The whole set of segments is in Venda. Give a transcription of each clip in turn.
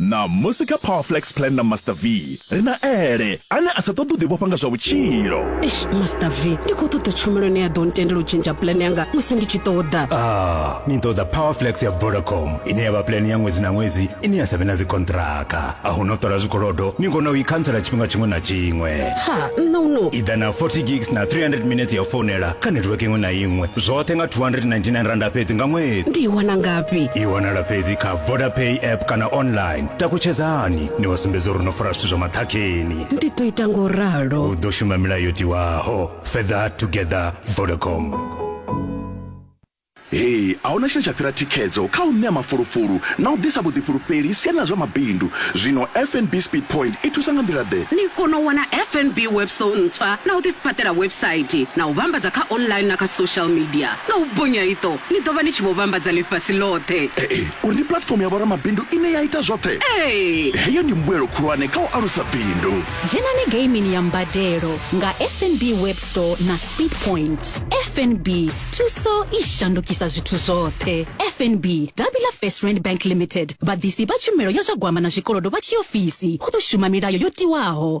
Ṋamusi kha Power Flex Plan na Master V, ri na Ele, ane a sa ṱoḓi u ḓivhofha nga zwa vhutshilo. Eish, Master V, ndi khou ṱoḓa tshumelo ine ya ḓo ntendela u tshentsha plan yanga musi ndi tshi ṱoḓa. Ah, ni ṱoḓa Power Flex ya Vodacom, ine ya vha plan ya ṅwedzi na ṅwedzi ine ya sa vhe na dzikonṱiraka. A hu na u ṱola zwikolodo, ni kona u i khantsela tshifhinga tshiṅwe na tshiṅwe. Ha, nṋe u no. I ḓa na 40 gigs na 300 minetse ya u founela kha netiweke iṅwe na iṅwe, zwoṱhe nga R299 fhedzi nga ṅwedzi. Ndi i wana ngafhi? I wanala fhedzi kha. vodapay app kana online takutshedzani ni wa sumbedza uri no fara zwithu zwa maṱhakheni ndi ḓo ita ngo ralo u ḓo shuma milayo yo tiwaho further together vodacom hei a huna tshine tsha fhira thikhedzo kha u ṋea mafulufulu na u ḓisa vhuḓifhulufheli siani ḽa zwa mabindu zwino fnb speed point i thusa nga nḓila ḓe ni kono u wana fnb webso ntswa na u ḓifhaṱela website na u vhambadza kha online na kha social media nga u bonya iṱo ni ḓo vha ni tshi vho vhambadza ḽifhasi ḽoṱhe. Ee, uri ndi puḽatifomo ya vhoramabindu ine ya ita zwoṱhe. Ee! Heyo ndi mbuelo khulwane kha u alusa bindu. Dzhenani geimini ya mbadelo nga FNB Web Store na Speedpoint. FNB, thuso i shandukisa zwithu zwoṱhe. FNB, davhi ḽa First Rand Bank Limited, vhaḓisi vha tshumelo ya zwa gwama na zwikolodo vha tshiofisi, hu ḓo shuma milayo yo tiwaho.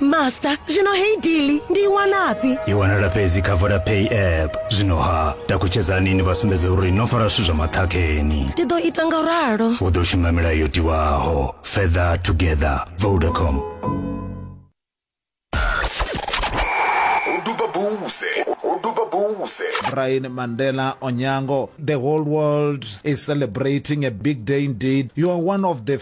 master zwino hei dili ndi i wanafhi i wanala fhedzi kha vodapay app zwino ha takutshedzani ni vha sumbedze uri no fara zwithu zwa maṱhakheni ndi ḓo ita nga ralo u ḓo shuma milayo yo tiwaho further together vodacom uduba buze uduba buze Brian Mandela Onyango. The whole world is celebrating a big day indeed. You are one of the